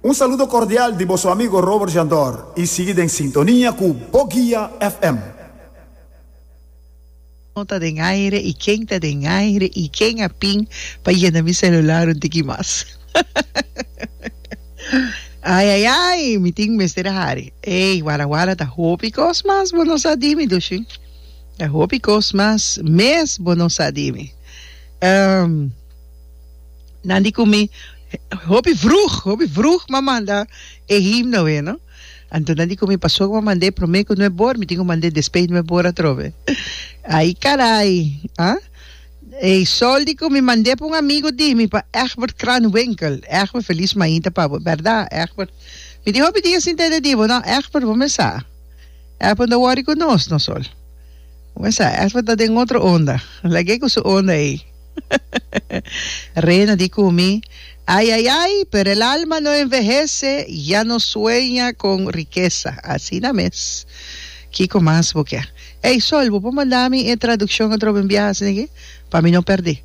Un saludo cordial di boso amigo Robert Jandor y sigui den sintonia cu Bo Guia FM. No ta den aire y ken ta den aire y ken a pin pa yena mi celular un tiki mas. Ay ay ay mi tin mester a hari. Ey wara wara ta hopi cos mas bo no sa di mi dushi. Ta hopi cos mas mes bo no sa di mi. Ehm. Nan di cu mi, Hopi vroeg, hopi vroeg m'a manda e himno wee, no? Anto nan di cu mi, Paso cu m'a manda e prome cu nue bor, mi tin cu manda e despey nue bor atrobe. Ay caray, ah? Eysol di cu mi mand'e pa un amigo di mi, pa Egbert Kranwinkel. Egbert Feliz Mainta pa bo, berda, Egbert? Mi tin hopi dia sinta ede di bo, no? Egbert, bo mester sa. Egbert no worry cu nos, no sol. Bo mester sa, Egbert ta den otro onda. Lag'e cu su onda ey. Rena di kumi, Ay, ay, ay, pero el alma no envehece, ya no sueña con riqueza. Asina mes. Kiko mas bo ke? Ey, Sol, bo por manda mi e traduccion atrobe un biaha asina aki pa mi no perdi.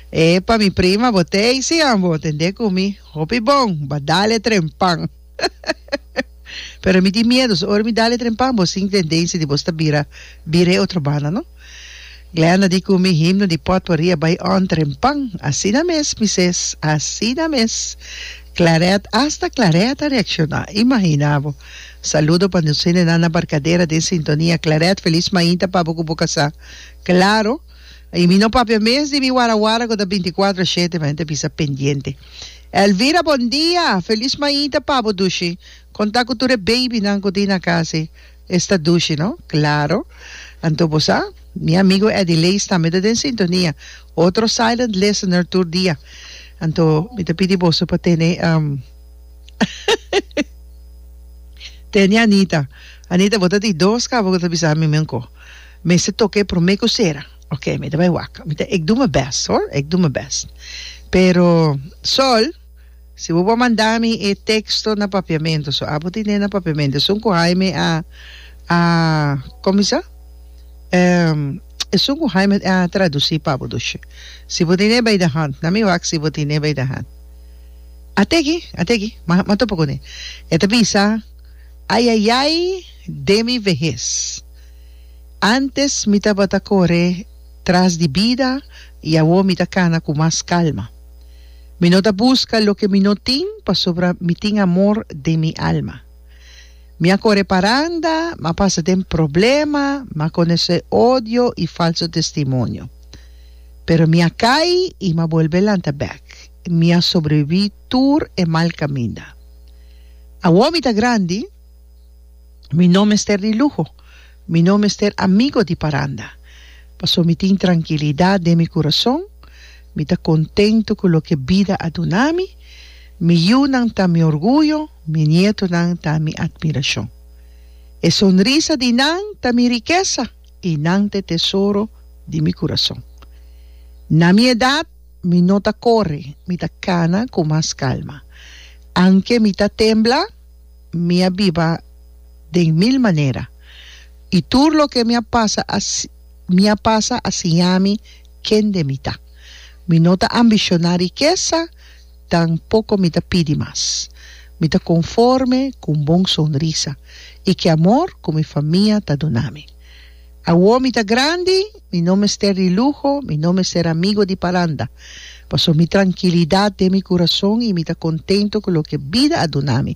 Epa, mi prima, bo ta ey si, an? Bo tende kumi hopi bon, ba dale trempan. Pero mi tin miedo, so ora mi dal e trempan bo sin tendensia di bo sta bira bira e otro banda no. Glenda di cu mi himno di potpourri bay on trempan. Asina mes mi ses, asina mes. Claret, hasta Claret a reacciona, imagina bo. Saludo pa nos hendenan na Barcadera den sintonia. Claret, feliz mainta pa bo cu bo casa. Claro. Y mi no papia mes di mi wara wara cu ta binticuatro shete, mi ente bisa pendiente. Elvira bon dia! Feliz maita pa bo Dushi. Con ta cu tur e baby nan cu tin na casi? Esta Dushi no? Claro. Anto bo sa? Mi amigo Eddy Lees tambe ta den sintonia. Otro silent listener tur dia. Anto mi ta pidi boso pa tene um tene Anita. Anita bo ta di dos cabo cu ta bisa mi miunco. Mester toca e prome cu cera. Oke mi ta bai wak mi ta ec do mi best hoor ec do mi best pero Sol si bo bo manda mi e texto na papiamento so abo tin den na papiamento esun cu Jaime a a como esa esun cu Jaime a traduci pa bo dushi si bo tin den bay de hand na mi wak si bo tin den bay de hand a te aki a te aki ma ma topo cune e ta bisa ayayay de mi vehes. Antes mi tabata kore tras di bida i awor mi ta kana ku mas kalma. Mi no ta buska loke mi no tin pasobra mi tin amor den mi alma. Mi a kore paranda, mi a pasa den problema, mi a konosé odio i falso testimonio. Pero mi a kai i mi a bolbe lanta bèk. Mi a sobreviví tur e mal kaminda. Awor mi ta grandi. Mi no mester di luho, mi no mester amigo di paranda, pasobra mi tin trankilidat den mi kurason, mi ta kontentu ku loke bida a duna mi, mi yunan ta mi orguyo, mi nietonan ta mi atmirashon. E sonrisa di nan ta mi rikesa i nan ta e tesoro di mi kurason. Na mi edat mi no ta kore, mi ta kana ku mas kalma, aunke mi ta tembla, Mi a biba den mil manera, i tur loke mi a pasa a mi a pasa a siñami kende mi ta. Mi no ta ambishoná rikesa, tampoko mi ta pidi mas. Mi ta konforme ku un bon sonrisa i ki amor ku mi famia ta dunami. Awo mi ta grandi, mi no mester di luho, mi no mester amigo di paranda, pasobra mi trankilidat den mi kurason i mi ta kontento ku loke bida a dunami.